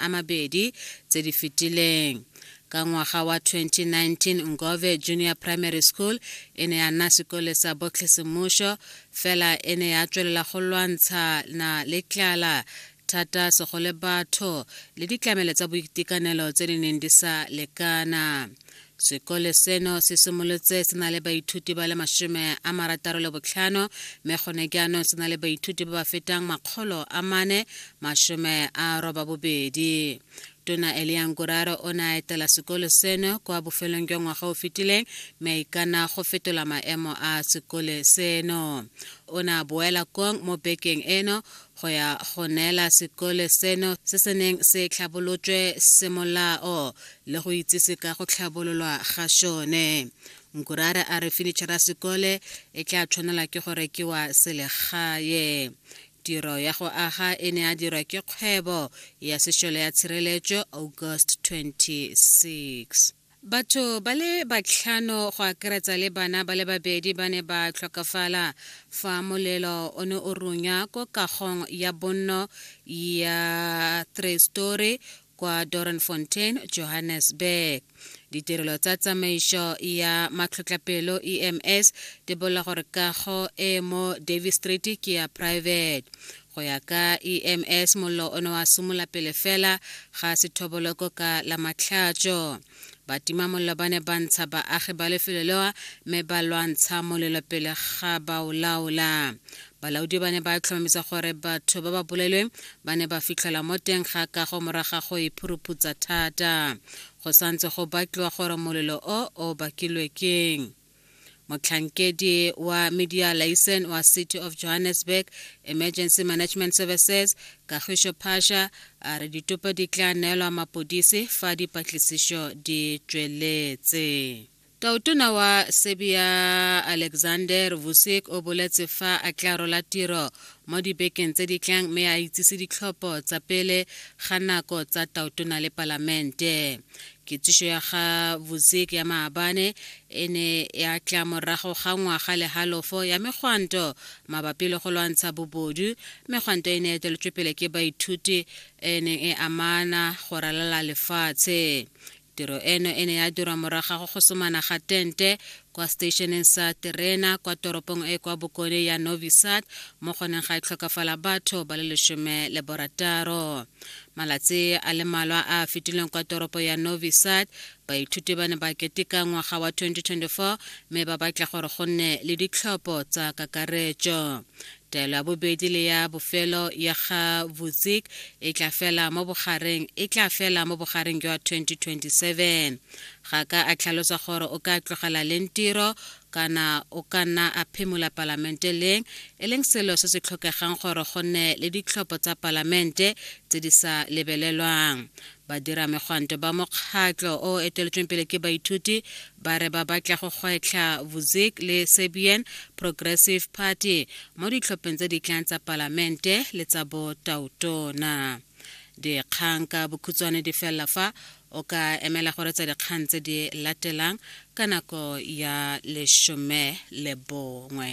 a mabedi tse di fetileng ka ngwaga wa 2019 ngove junior primary school e ne ya nna sekole sa botlhesemušo fela e ne ya tswelela go lwantsha na le tlala thata segole batho le ditlamelo tsa boitekanelo tse di neng di sa lekana Sekole seno se simolotse se na le baithuti ba le masome a marataro le botlhano mme gone jaanong se na le baithuti ba ba fetang makgolo a mane masome a roba bobedi tona eliang kuraro o ne a etela sekolo seno kwa bofelong jwa ngwaga o fetileng mme a ikana go fetola maemo a sekole seno o ne a boela kong mo bekeng eno go ya go neela sekole seno se se neng se tlhabolotswe semolao le go itsise ka go tlhabololwa ga sone nkurare a re fenitšhara ya sekole e tla tshwanela ke go rekiwa selegae tiro ya go aga e ne a dirwa ke kgwebo ya sešole ya tshireletso august 26 Batho ba le batlhano go akaretsa le bana ba le babedi ba ne ba tlhokafala fa molelo o ne o runya ko kagong ya bonno ya three story kwa Doornfontein, Johannesburg. Ditirelo tsa tsamaiso ya matlhotlapelo EMS di bolela gore kago e mo Davey Street ke ya private. Go ya ka EMS, mollo o ne wa simola pele fela ga sethoboloko ka la matlhatšo. Batima mollo ba ne ba ntsha baagi ba lefelo lewa mme ba lwantsha molelo pele ga ba o laola. Balaodi ba ne ba tlhomamisa gore batho ba ba bolailweng ba ne ba fitlhelwa mo teng ga kago morago ga go e phuruputsa thata. Go santse go batliwa gore molelo o o bakilwe keng. motlhankedi wa media license wa city of johannesburg emergency management services kagišo phasha a re ditopo di tla neelwa mapodisi fa dipatlisišo di tšweletse tautona wa serbia alexander vusic o boletse fa a tla rola tiro mo dibekeng tse di tlang mme a itsise ditlhopho tsa pele ga nako tsa tautona le palamente kitsišo ya ga vuzek ya maabane e ne ya tla morago ga ngwaga le halofo ya megwanto mabapi le go lwantsha bobodu megwanto e ne ya tšweletšwe pele ke baithuti e neng e amana go ralala lefatshe tiro eno e ne ya dirwa morago go somana ga tente kwa seteisheneng sa terena kwa toropong e kwa bokone ya Novi Sad mo goneng ga e tlhokafala batho ba le lesome le borataro. Malatsi a le malwa a a fetileng kwa toropo ya Novi Sad, baithuti ba ne ba keteka ngwaga wa 2024 mme ba batla gore go nne le ditlhopho tsa kakaretso. Taelo ya bobedi le ya bofelo ya ga Vucic e tla fela mo bogareng e tla fela mo bogareng jwa 2027. Ga ka a tlhalosa gore o ka tlogela leng tiro kana o ka nna a phimola palamente leng, e leng selo se se tlhokegang gore go nne le ditlhopho tsa palamente tse di sa lebelelwang. Badiramegwanto ba mokgatlo o o eteletsweng pele ke baithuti ba re ba batla go gwetlha Vusic le Serbian Progressive Party mo ditlhopheng tse di tlang tsa palamente le tsa botautona. Dikgang ka bokhutshwane di felela fa o ka emela go retsa dikgang tse di latelang ka nako ya lesome le bongwe.